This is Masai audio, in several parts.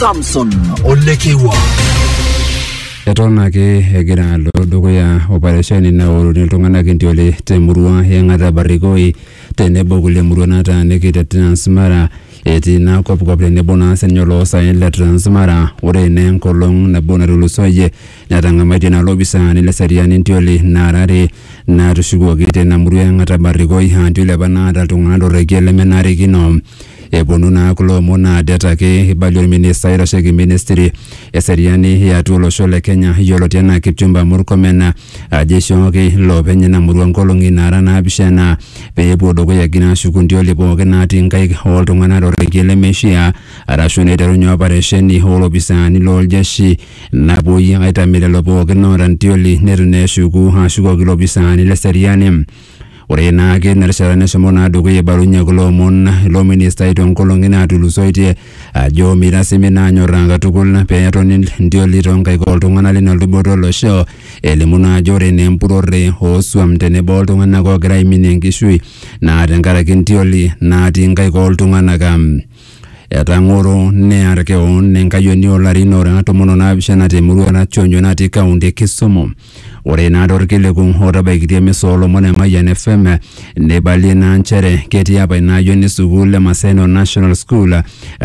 Samson Olekewa. Eton ake egira alo dukuya operesheni naoruni iltung'anak entiole temurua e Ng'ata Barikoi tenebo kulie murua nataaniki te Transmara etii ina kopkop tenebo naa sininye oloosaen le Transmara ore naa enkolong nabo natulusoyie netang'amaitie naa lopisaani le seriani entioli naara are naatushukuoki teina murua e Ng'ata Barikoi aa entioli apa naata iltung'anak torrekie lemenarikino Eponu naa kulo omon naa det ake eibalie olminista oitasheki ministry eseriani e atua olosho le Kenya yioloti enaa Kipchumba Murkomen ajo eishooki iloopeny ina murua nkolong'i naara naapishana pee epuo dukuya egira aashuku ntioli pooki naatii nkaik oo ltung'anak to rrekie lemeishiaa arashu neiterunye oparesheni oo lopisaani loo ljeshi napuoi aitamie lelo pooki oota ntioli neitu naa eshuku aashukoki ilopisaani le seriani. Ore naake ina rishata neshomo naa dukuya eibalunye kulo omon ilo ministai toonkolong'i naatulusoitie ajo meitasimi naa anyorraa katukul pee etoni ntioli toonkaik ooltung'anak lina luboto olosho elimu naa ajo ore naa empurrore oosuam tenebo oltung'anak oogira aiminie enkishui naa tenkaraki ntioli naatii nkaik ooltung'anak. Etang'oro near keon enkayioni oolarin oora tomon onaapishana temurua e Rationyo natii kaunti e Kisumu. Ore ina torkiliku otabaikitia emisa oolomon e Mayian FM neibalie naa nchere ketii apa ina ayioni sukuul e Maseno National School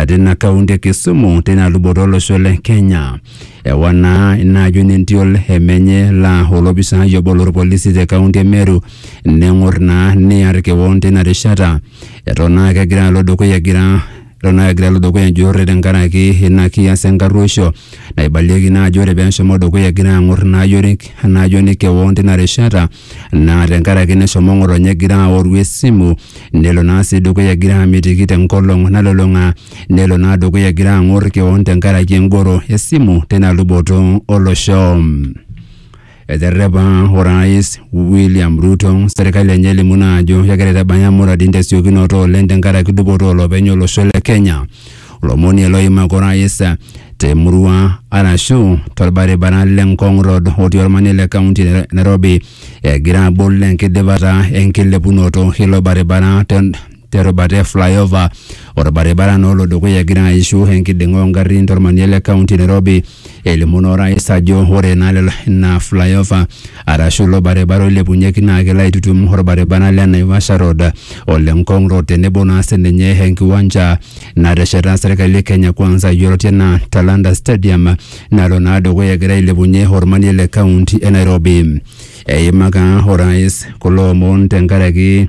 tina kaunti e Kisumu tina luboto olosho le Kenya. Ewa naa ina ayioni entiol e menye laa olopisaai obo lorpolisi te kaunti e Meru neng'or naa near keon tina rishata. Eton naa kegira alo dukuya egira eton naa kegira alo dukuya enjurrore tenkaraki ina kias enkarruoisho naibalieki naa ajo ore peeshomo dukuya egira ang'or ina ayioni ina ayioni kewon tina rishata naa tenkaraki neshomo ng'otonye egira aoru esimu nelo naa sii dukuya egira amitiki tenkolong nalulung'a nelo naa dukuya egira ang'or kewon tenkaraki engoro esimu tina luboto olosho. Eterrepa Orais William Ruto serkali enye elimu naa ajo kegira aitabaya muradin tesiokinoto oleng tenkaraki dupoto olopeny olosho le Kenya. Olomoni ele oimaki orais temurua arashu torbaribara le Ngong Road otii ormanie le kaunti e Nairobi egira abol enkidipata enkilepunoto ilo baribara te terubata e flyover orbaribara naa olo dukuya egira aishu enkiding'a ongarrin tormanie le kaunti Nairobi elimu naa orais ajo ore naa lelo ina flyover arashu ilo baribara oilepunyeki naa kelo aitutum orbaribara le Naivasha Road ole Ngong Road tenebo naa sininye enkiwanja natesheta serkali e Kenya Kwanza yioloti enaa Talanta Stadium nalo naa dukuya egira ailepunyie ormanie le kaunti e Nairobi eimaka orais kulo omon tenkaraki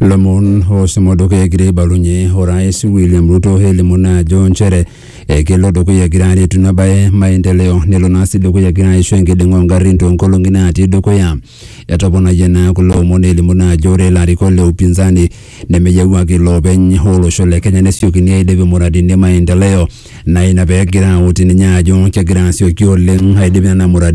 lomon osumodoki egira aibalunye orais William Ruto elimu naa ajo nchere ekelo dukuya egira aretu ina bae maendeleo nelo naa sii dukuya egira aisho enkiding'a ongarrin toonkolong'i naatii dukuya. Etoponayie naa kulo omon elimu naa ajo ore ilarikok le upinzani nemeyieu ake iloopeny olosho le Kenya nesiokini aidip imuradini e maendeleo naa ina pegira autu ninye ajo kegira asioki oleng aidip nena muradini